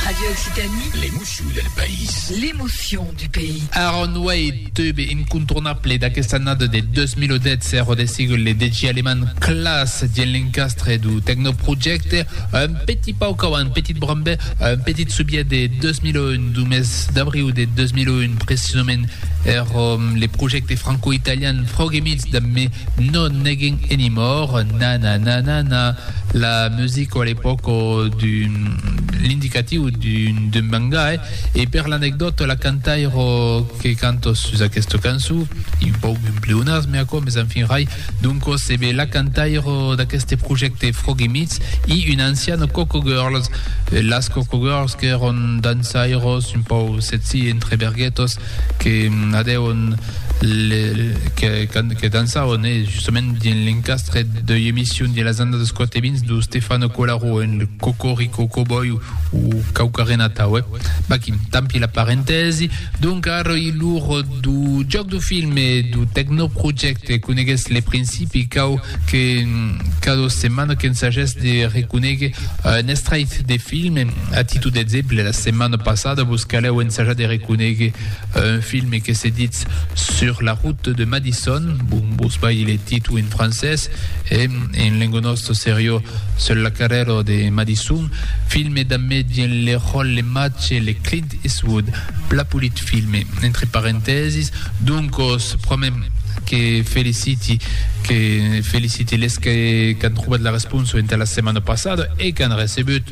Radio Occitanie. L'emoció del país. L'emoció du pays. Aaron Wade, tube incontournable d'aquesta annada de 2010 ero de sigle le DJ alemand Klaas dien l'encastre du Techno Project, un petit pauc avant, petit brambe, un petit subiet de 2001, du mes d'abriu de 2001 precisament, ero le projecte franco-italian Froggy Meets damb Me No Negging Anymore, Na Na Na Na Na. La music o a l'epòc o d'un l'indicatiu d'un bangai e per l'anecdòta la cantaira que canta sus aquesta cançon, un pauc d'un pleonasme aquò mes enfin rai, doncas ebe la cantaira d'aqueste projècte Froggy Meets i una anciana Coco Girls, las Coco Girls qu'èran dansairas un pauc sexy entre berguetas que adèron que dançaron e justament dins l'encastre deu emission dins las annadas 4 e 20 deu Stefano Colarro en Cocorico Cowboy o quauquarren atau eh baquin tampi la parentèsi donc ara i lor deu jòc deu film e deu tecnoprojècte coneguètz le principi cau que cada setmana qu'ensagètz de reconéguer un estrait de film A títol d'exemple, la setmana passada vos calèu ensajar de reconéguer un filme que se ditz Sur la route de Madison, bon, vos balhi le títol en francés, e en lenga nòsta serió Sur la carrèra de Madison, filme damb Medien le Rol le Mache le Clint Eastwood, pla polit filme, entre parentèsis, doncos promèm que feliciti, que feliciti les qu'an trobat la responsa entà la setmana passada e qu'an recebut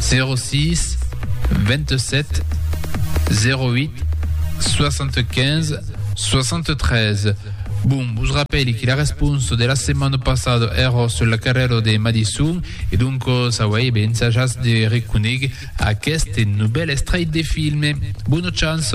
06 27 08 75 73. Bon, vos rapèli que la responsa de la setmana passada èra sur la carrèra de Madison e donc s'auei ben ensajats de reconègui aqueste novèl estrèit de filme. Bona chance!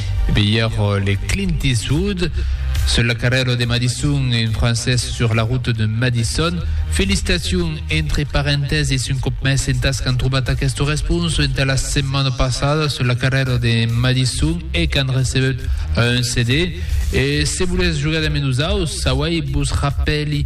Vier le Clint Eastwood sur la carrèra de Madison, un francés sur la route de Madison. Felicitation entre parentèses un cop més entas qu'an trobat aquest respons entà la setmana passada sur la carrèra de Madison e qu'an recebut un CD. E se volètz jogar damb nosaus, sauai vos rapèli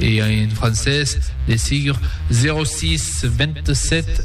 E en francés, de sigur, 06 27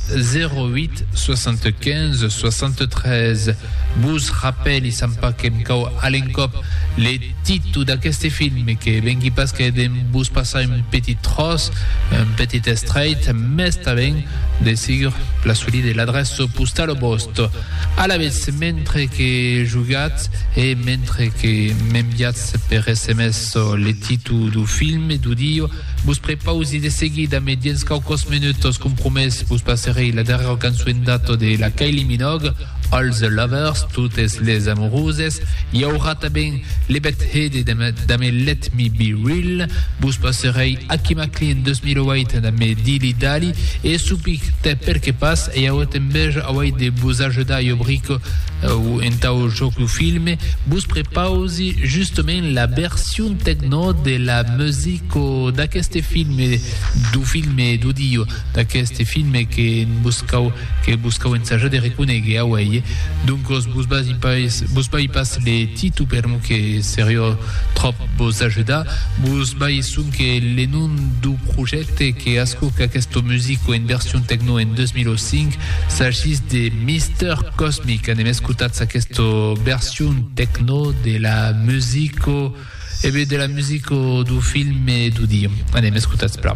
08 75 63. Vos rapèli, sant pas que em cau a l'encòp, le titu d'aqueste film, que vengui pas que de vos passar un petit tròç, un petit estrèit, mès tanben, de sigur, la soli de l'adrèça postala vòsta. Alavetz, mentre que jogatz e mentre que m'enviatz per sms, Çò le titu du film e du dio. Vos prepausi de seguida me diens quauquòs menutos compromés vos passerei la darrèra cançuendata de la Kylie Minogue, All the Lovers, Totes les Amouroses, i aurà tanben le bèth hede damb damb Let me be real, vos passerei Aki Maklin 2008 damb Dilly Dally e Soupik, tè perqué pas, e aué tanben auei de vos ajudar jo brico O entau jòc lo filme vos prepausi justament la version tecno de la musico d'aqueste filme, du filme d'audio d'aqueste filme que vos cau que vos cau ensajar de reconéguer auèi. Doncos vos basi pas vos bai pas le titu per non que serió tròp vos ajudar, vos bai sonque le nom du projècte que ascoca aquesta musico en version tecno en 2005 S'agís de Mister Cosmic, anem escutats aquesta version techno de la musico, e eh ben de la musico du film e du dia. Anem escutats, pla.